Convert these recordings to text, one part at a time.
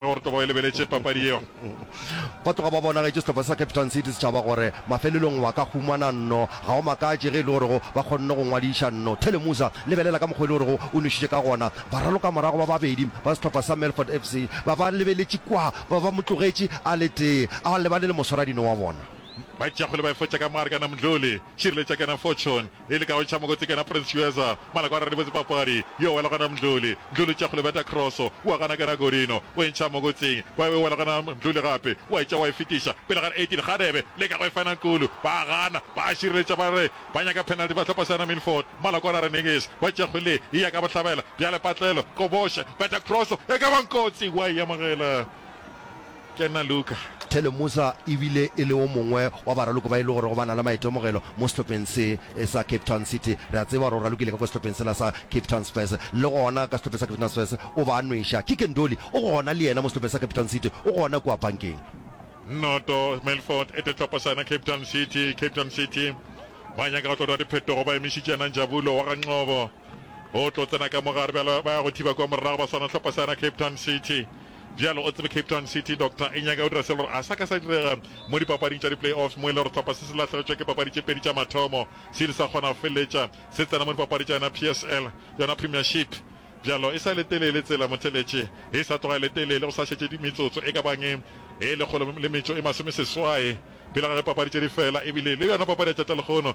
gore toba e lebeletše papadi yeo. Ba tloga ba bonagetše sehlopha sa Cape Town City Setšhaba gore mafelelong wa ka humana nno. Ga o makatše ge e le gorego ba kgonne go ngwadiša nno. Thele Musa, lebelela ka mokgwa e le gorego o nwešitše ka gona. Baralokamorago ba babedi ba sehlopha sa Melfort FC ba ba lebeletše kwa, ba ba mo tlogetše a le tee, a lebane le moswaradino wa bona. Ba tšea kgwele ba e fotša ka Marga Namdluli, Tšireletšakena Fortune, E le ka go ntšha mokoti ke yena Prince Chueza, Malako a re re botse papadi, yo wela gona Mdluli, Mdluli tša go le beta cross, wa gana ke yena Godino, o e ntšha mokoting, ba e wela gona Mdluli gape, wa e tšea wa e fetiša pele ga Eighteen, Kgadebe leka go e fina Nkulu, ba a gana, ba a šireletša ba re ba nyaka penalty bahlopha sa yena Milford, Malako a na re niks, ba tšea kgwele ye, e ya ka bohlabela, bjale Patlelo, Koboshe, beta cross, e ka ba Nkotsi, wa e amogela. Kena Luka. Thele Musa e bile e le o mongwe wa baraloko ba e le gorego ba na le maitemogelo mo sehlopheng se sa Cape Town City. Re a tseba gore o ralokile ka kwa sehlopheng sela sa Cape Town Spurs. Le gona ka sehlopheng sa Cape Town Spurs o ba a nweša. Kike Ndoli o gona le yena mo sehlopheng sa Cape Town City, o gona kua pankeng. Noto, Melfort e tetlopasana Cape Town City. Cape Town City ba nyaka go tlo dira diphetogo ba emišitše yena Njabulo wa ga Nqobo. O tlo tsena ka mo gare bjalo, ba ya go thiba kwa morago ba swana hlopha sa yona Cape Town City. Bjalo o tsebe Cape Town City doctor e nyaka o dira se le gore a sa ka sa direga mo dipapading tša di-play-offs mo e le gore hlopha se se lahlegetšwe ke papadi tše pedi tša mathomo se ile sa kgona go feleletša se tsena mo dipapadi tša yona PSL, yona Premiership. Bjalo e sa le telele tsela motheletše, e sa tloga e le telele, go sa šetše metsotso e ka bang e lekgolo le metšo e masomeseswae pele ga ge papadi tše di fela ebile le yona papadi ya tša-talekgono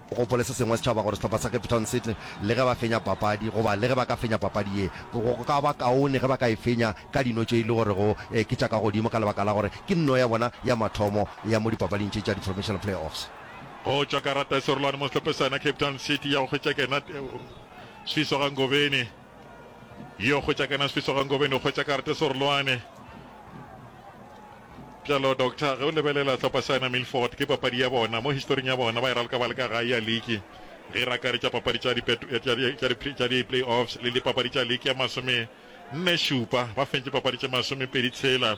O gopole se sengwe, setšhaba, gore sehlopha sa Cape Town se tle le ge ba fenya papadi, goba le ge ba ka fenya papadi ye, go ka ba kaone ge ba ka e fenya ka dino tše e le gorego ke tša ka godimo, ka lebaka la gore ke nno ya bona ya mathomo ya mo dipapading tše tša di-provincial play-offs. Go tšwa karata e serolwane mo sehlophe sena Cape Town City ya go hwetša Kenat Sifiso ga Ngobeni. Yo hwetša kana Sfiso ga Ngobeni o hwetša karate Sorloane. Bjalo doctor ge o lebelela hlopha sa yona Milford ke papadi ya bona mo historing ya bona ba e raloka ba le ka gae ya liki ge e rakaretša papadi tša di-playoffs le dipapadi tša liki ya masome nne šupa ba fentše papadi tše masome pedi tshela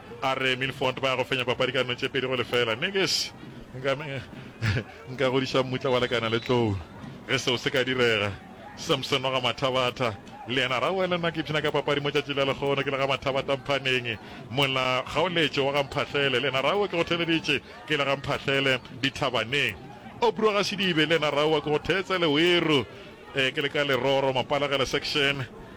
A re Milford ba ya go fenya papadi ka dino tše pedi go lefela. Mme ke š, nka, nka godiša mmutla wa lekana le tlou ge seo se ka direga. Samson wa ga Mathabatha le yena a re, Aowa, le nna ke ipshina ka papadi mo tšatši la lehono, ke le ga Mathabatha Mphaneng. Mola Kgaoletšo wa ga Mphahlele le yena a re, Aowa, ke go theeleditše, ke le ga Mphahlele Dithabaneng. Obro Gasidibe le yena a re, Aowa, ke go theetsa Leweru, ke le ka Leroro, Mapalegele section.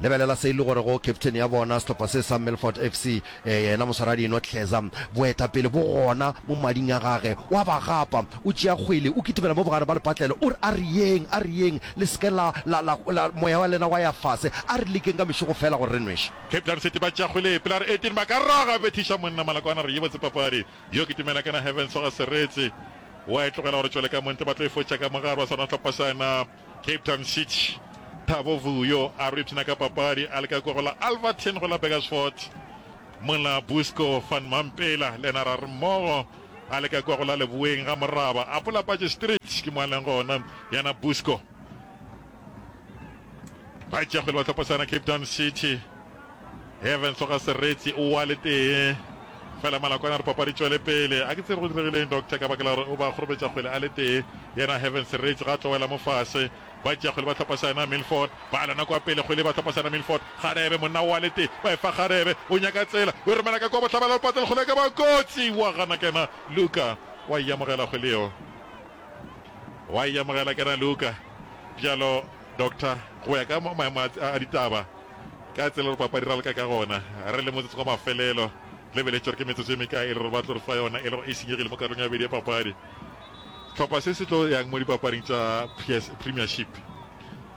Lebelela se e le gorego captain ya bona sehlopha se sa Milford FC, ee, yena moswaradinwa Tlheza. Boetapele bo gona mo mading a gage. O a ba gapa, o tšea kgwele, o kitimela mo bogare ba lepatlelo, o re, A re yeng, a re yeng, le se ke la, la, la, la, moya wa lena wa ya fase. A re lekeng ka mešogo feela gore re nwešwe. Cape Town City ba tšea kgwele, pele a re Etienne ba ka raga, a bethiša monna Malakwana, a re, Ye botse papadi, yo kitimela kana Hervens wa ga Seretse. O a e tlogela gore tšwele ka mo ntle, ba tlo e fotša ka mo gare, ba swana sehlopha sa na. Cape Town City, Thabo Vuyo a re ipshina ka papadi a leka koro la Alverton go la Burgersfort, mola Busco van Mampela le ena ra re mmogo a leka koro la Leboeng ga Moraba. A pola patše Street ke mo a leng gona yana Busco. Ba tšea kgwele ba tlhophosana Cape Town City. Heaven tloga sereti o wa le tee fela malakwana re papadi tšwele pele a ke tsebe go diregileng doctor ka baka la gore o ba gorobetša kgwele a le tee yena Heaven sereti ga tlowela mo fase ba tšea kgwele ba tlhopa sana Milford ba alana kwa pele kgwele ba tlhopa sana Milford Kgarebe monna wa le tee ba e fa Kgarebe o nyaka tsela o romela ka kwa bohlabela o patela kgwele ka ba kotsi wa gana kena Luka wa e amogela kgwele yeo wa e amogela kena Luka bjalo Doctor, go ya ka maemo a, a, a ditaba ka tsela gore papadi ra leka ka gona re le motsotso wa mafelelo le beletše gore ke metsotso e mekae e le gore ba tlo re fa yona e le gore e senyegile mo karolong ya bedi ya papadi tlhopha se se tlo yang mo dipapading tša premiership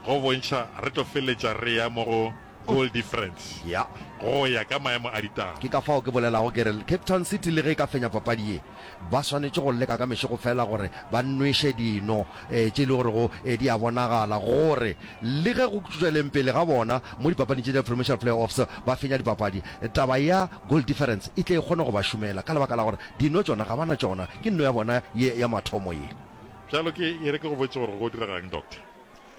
go bontšha re tlo feleletša re ya mo go Goal difference ya go ya ka maemo a ditaba. Ke ka fao ke bolelago ke re Cape Town City le ge e ka fenya papadi ye, ba swanetše go leka ka mešego feela gore ba nweše dino tše e le gorego di a bonagala gore le ge go tšweleng pele ga bona mo dipapading tše tša Provincial Playoffs ba fenya dipapadi, taba ya goal difference e tle e kgone go ba šomela ka lebaka la gore dino tšona ga ba na tšona, ke nno ya bona ye ya mathomo ye. Bjalo ke e re ke go botše gore go diraga'ng, Doctor?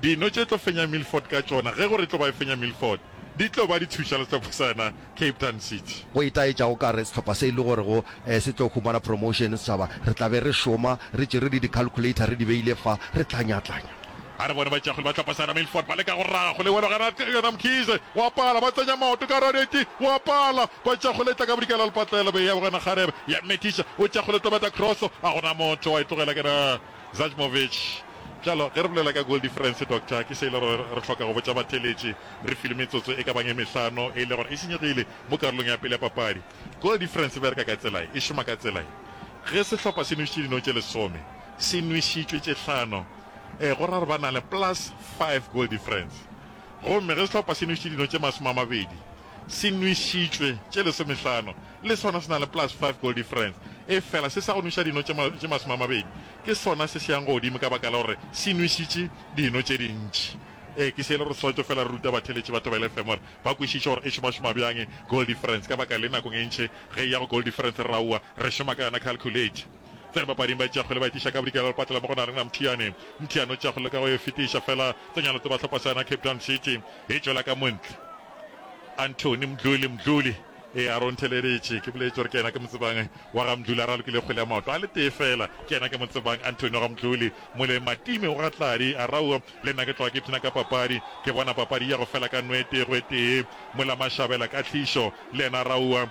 Dino tše tlo fenya Milford ka tšona, ge gore e tlo ba e fenya Milford, di tlo ba di thuša le sehlopha sa yona Cape Town City. Go itaetša o ka re sehlopha se e le gorego se tlo humana promotion setšhaba, re tla be re šoma re tšere le di-calculator re di beile fa, re tlanyatlanya. A re bone batšeakgwele ba sehlopha sa yona Milford ba leka go raga go lewelo gare ga yona Mkhize, wa pala, ba tsenya maoto ka gare ga neti, wa pala, batšeakgwele e tla ka bodikela le patlelo, be e ya go yena Kgarebe, ya methiša, o tšeakgwele tobeta cross, a gona motho, wa e tlogela ke na. Zajmovic, Bjalo, ge re bolela ka goal difference, Doctor, ke se e le gore re hloka go botša batheeletši re filwe metsotso e ka bang e mehlano e le gore e senyegile mo karolong ya pele ya papadi. Goal difference e bereka ka tsela ye, e šoma ka tsela ye, ge sehlopha se nwešitše dino tše lesome, se nwešitšwe tše hlano, ee, go ra gore ba na le plus five goal difference. Gomme ge sehlopha se nwešitše dino tše masome a mabedi, se nwešitšwe tše lesomehlano, le sona se na le plus five goal difference, efela se sa go nweša dino tše masome a mabedi ke sona se se yang godimo ka baka la gore se nwešitše dino tše dintši. Ee, ke se e le gore Soweto feela re ruta batheeletši ba Thobela FM gore ba kwešiše gore e šomašoma bjang goal difference ka baka le nakong e ntši ge e ya go goal difference re aowa re šoma ka yona calculator tla re bapading ba e tšeakgwele ba e tliša ka bodikela ba patela mo go na rena Mthiyane Mthiyane o tšeakgwele ka go e fetiša fela tsenyana tse ba hlopha sa yona Cape Town City e tšwela ka montle Anthony Mdluli, Mdluli, ee, a re o ntheleleditše, ke boletše gore ke yena ke mo tsebang, wa ga Mdluli, a re a lokile kgole ya maoto a le tee feela, ke yena ke mo tsebang, Anthony wa ga Mdluli, mole Matime o ga Tladi, a rawo, le nna ke tloga ke ipshina ka papadi, ke bona papadi e ya go fela ka nwete, gwetee, mola Mashabela, Katlhišo, le yena a rawo,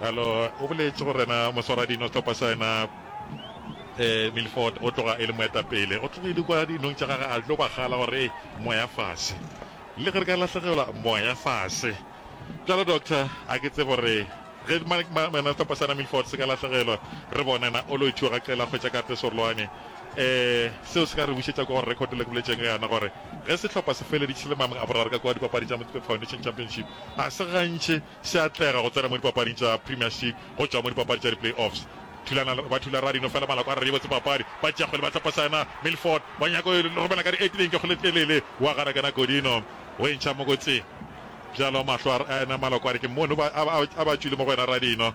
Bjalo o boletše gore na Moswaradino Tlhopa sa yena eh, Milford o tloga e le moetapele. O tlogile kwa dinong tša gage a tlo bagala gore e moya fase. Le ge re ka lahlegelwa moya fase. Bjalo doctor a ke tsebe gore ge mena Tlhopa sa yena Milford se ka lahlegelwa re bone na o lo ithiwa ga qela hwetša kate sorolwane. Eh, seo se ka re bušetša kwa gore record le ke boletšeng ka yona gore ge sehlopha se feleditše le mamang a boraro ka kwa dipapadi tša Motsepe Foundation Championship a se gantši se atlega go tsena mo dipapading tša Premiership go tšwa mo dipapadi tša di-play-offs. Thulana ba thula rra Dino fela maloko a re yebotse papadi. Batšeakgwele ba tlapasana, Milford wa nyaka go e romela ka diatleng ke Kgoletlelele wa gana kena Godino go e ntšha mokotseng. Bjalo mahlo a ena maloko a re ke mono a ba tšwile mo go wena rra Dino.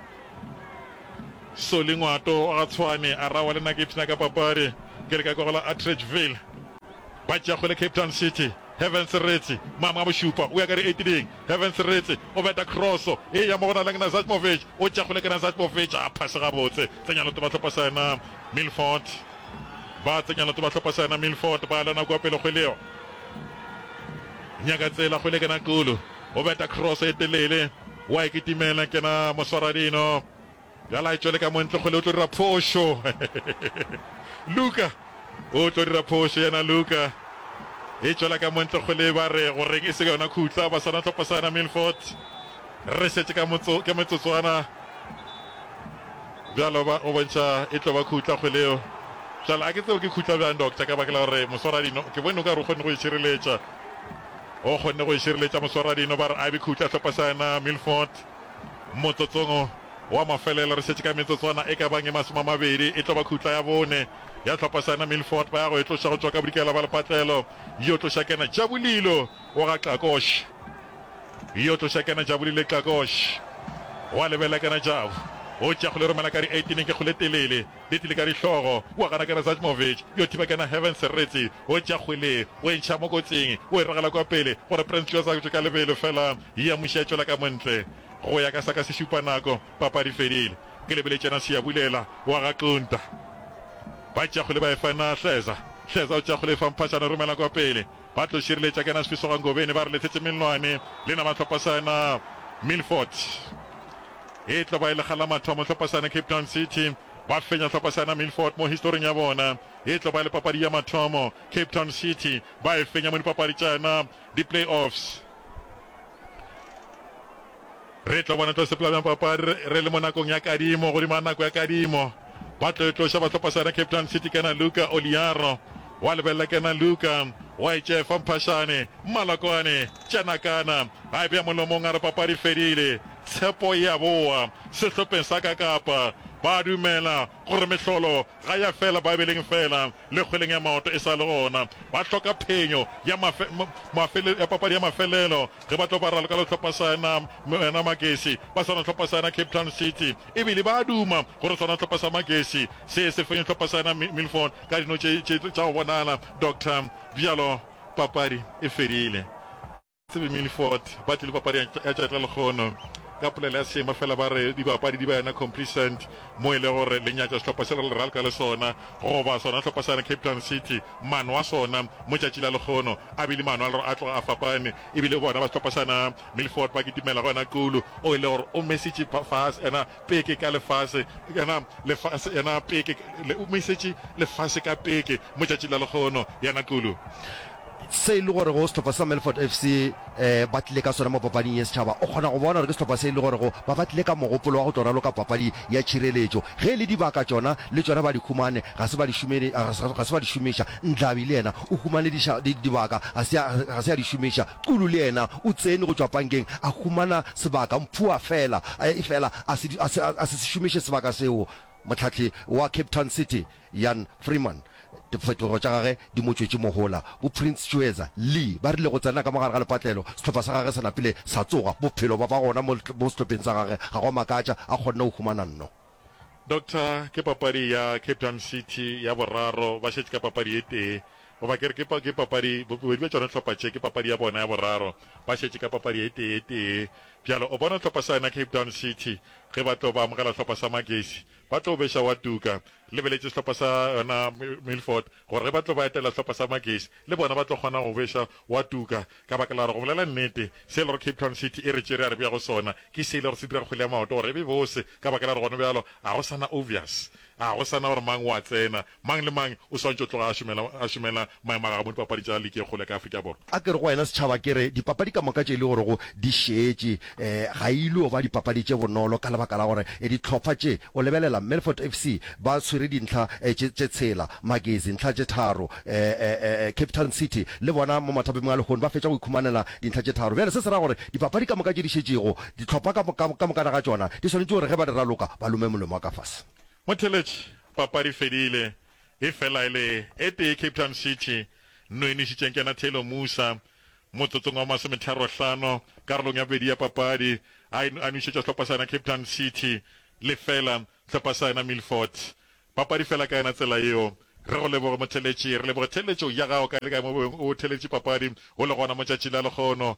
Solly Ngwato wa ga Tshwane a rawa le nna ke ipshina ka papadi ke le ka kwa go la Atteridgeville ba tšeago le Cape Town City. Heaven Seretse, Mama wa bošupa, o ya ka re eitiding. Heaven Seretse o beta kroso e ya mo go na le Gnazajmovic, o tšeago le ke Nazajmovic a phase gabotse. Tsenya letoba tlhopa sa yena Milford, ba tsenya letoba tlhopa sa yena Milford, ba lana kwa pele go leo Nyakatsela go le ke Naqulu o beta kroso e telele. Wa e kitimela ke na moswaradino. Bjale a e tšwele ka montlokgole o tlo dira phošo. Luka o tlo dira phošo yena Luka. E tšwela ka montlokgole ba re go reng e se yona khutla ba sana tlhopa sana Milford. Re šetše ka motso ke metsotswana. Bjalo ba go bontšha e tlo ba khutla kgweleo. Bjale a ke tseo ke khutla bjang doctor ka bakela gore moswaradino ke bone o ka re o kgonne go e šireletša. O kgonne go e šireletša moswaradino ba re a be khutla hlopa sa yena Milford motsotsong wa mafelelo. Re šetše ka metsotswana e ka bang e masomamabedi e tlo ba khutla ya bone ya hlopa sa yena Milford ba ya go e tloša go tšwa ka bodikela ba lepatlelo yo tloša kena Jabulilo o ga Xakosh yo tloša kena Jabulile Xakosh wa lebelekana Jabu o tšea kgole romela ka di 18 ke kgole telele Di tlile ka dihlogo, O a gana ke Razajmovic, yo thiba kena Hervin Serritsi, o tša kgwele, o e ntšha mo kotsing, o e ragela kwa pele, gore Prinsloo a sa tšwe ka lebelo, fela Hia Mushi a tšwela ka mo ntle. Go ya ka sa ka se šupa nako, papadi e fedile. Ke lebeletšena Siya Bulela, o a ga Xunta. Ba tša kgwele ba e fa na Hleza. Hleza o tša kgwele e fa Mphashana, o romela kwa pele. Ba tlo šireletša kena Sfisoga Ngobeni, ba re lethetse Mellwane, le na mahlopha sa na Milford. E tlo ba e lekga la mathomo Tlhopasana Cape Town City ba fenya Tlhopasana Milford mo historing ya bona. E tlo ba e le papadi ya mathomo Cape Town City ba e fenya mo dipapadi tša yona di playoffs. Re tlo bona tlo sepela bjang papadi re, re le mo nakong ya kadimo godima nako ya kadimo. Ba tlo e tloša ba Tlhopasana Cape Town City kena Luka Oliaro wa lebelela kena Luka wa e tšefa mphashane mmalakwane tša nakana a e beya molomong a re papadi fedile. Tshepo e a boa sehlopheng sa ka Kapa. Ba a dumela gore mehlolo ga ya fela Baebeleng feela le kgweleng ya maoto e sa le gona. Ba hloka phenyo ya mafe, mafele, ya papadi ya mafelelo ge ba tlo ba raloka le hlopha sa yena, yena Magesi ba swana hlopha sa yena Cape Town City. E bile ba a duma gore swana hlopha sa Magesi se se fenye hlopha sa yena Milford ka dino tše tše tša go bonala. Doctor, Bjalo papadi e fedile. Tsebe Milford ba tlile papadi ya tšatla lekgono ka polelo ya seema fela ba re dibapadi di ba yona complacent mo e le gore le nyatša sehlopha se le ralka le sona goba sona sehlopha sa yona Cape Town City mano a sona mo tšatši la lekgono a bile mano a lero a tloga a fapane ebile bona ba sehlopha sana Milford ba kitimela go yona Kulu o e le gore o mesitše fase ena peke ka lefase, yena lefase, yena peke, le, o mo isetše lefase ka peke mo tšatši la lekgono, yena Xulu. Se e le gore go sehlopha sa Melfort FC e ba tlile ka sona mo papading ye setšhaba, o kgona go bona gore ke sehlopha se e le gore go ba ba tlile ka mogopolo wa go tlo raloka papadi ya tšhireletšo. Ge e le dibaka tšona, le tšona ba di humane, ga se ba di šumele, ga se ba di šomiša. Ndlabi le yena o humane diša, di, dibaka, ga se a, ga se a di šomiša. Kulu le yena o tsene go tšwa pankeng, a humana sebaka mphua fela, efela a se, a se, a se se šomiše sebaka seo. Mohlahli wa Cape Town City, Jan Freeman, diphethogo tša gagwe di mo tšwetše mohola. Bo Prince Chueza Lee ba rile go tsena ka mo gare ga lepatlelo, sehlopha sa gagwe se napile sa tsoga. Bophelo bja ba gona mo, mo sehlopheng sa gagwe, ga go a makatša, a kgonne go humana nno. Doctor, ke papadi ya Cape Town City ya boraro, ba šetše ka papadi ye tee, goba ke re ke papadi, bobedi bja tšona dihlopha tše ke papadi ya bona ya boraro, ba šetše ka papadi ye tee ye tee. Bjale o bona sehlopha sa yona Cape Town City ge ba tlo ba amogela sehlopha sa Magesi, ba tlo beša wa tuka, lebeletše sehlopha sa yona Milford gore ge ba tlo ba etela sehlopha sa Magesi le bona ba tlo kgona go beša wa tuka ka baka la gore go bolela nnete se e le gore Cape Town City e re tšere ya re bea go sona ke se e le gore se dira kgwele ya maoto gore e be bose ka baka la gore gona bjalo ga go sa na obvious ga go sa na gore mang o a tsena, mang le mang o swantšwe o tloga a šomela a šomela maemo a gagwe mo dipapadi tša liki e kgolo ya ka Afrika Borwa. A ke re go wena setšhaba ke re dipapadi ka moka tše e le gorego di šetše ga e ilo ba dipapadi tše bonolo ka lebaka la gore dihlopha tše o lebelela Milford FC ba tshwere dintlha tše tshela, Magesi ntlha tše tharo, Cape Town City le bona mo mathapameng a lehono ba fetša go ikhumanela dintlha tše tharo. Bjale se se ra gore dipapadi ka moka tše di šetšego dihlopha ka mokana ga tšona di swanetše gore ge ba di raloka ba lome molomo wa ka fase. Motheeletši, papadi e fedile, E fela e le e tee Cape Town City no e nwešitšeng kena Taylor Musa motsotsong wa masometharo-hlano karolong ya bobedi ya papadi, a e a nwešetša sehlopha sa yena Cape Town City lefela sehlopha sa yena Milford papadi fela ka yona tsela yeo. Re go leboge motheletši, re leboge theletšo ya gago kae le kae mo bobeng o theletše papadi go le gona mo tšatši la lekgono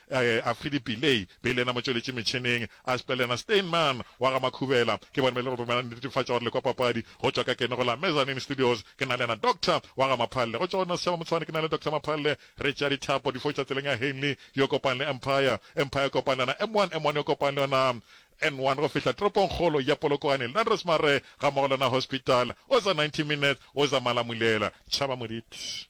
A Filipi Lay, be e le yena motšweletši metšhineng, a Asper le yena Steinmann wa ga Makhubela. Ke bona ba ile go romela netefatšo ya gore le kwa papadi go tšwa ka keno go la Mezzanine Studios. Ke na le yena Doctor wa ga Maphalle. Go tšwa go nna Setšhaba Motshwane, ke na le Doctor Maphalle re tšea dithapo di fo tšwa tseleng ya Henley yo kopang le Empire, Empire yo kopang le yona M1, M1 yo kopang le yona N1 go fihla toropongkgolo ya Polokwane, Landros Mare gammogo le yona Hospital. O za 90 Minutes, o za Malamulela. Tšhaba Moditi.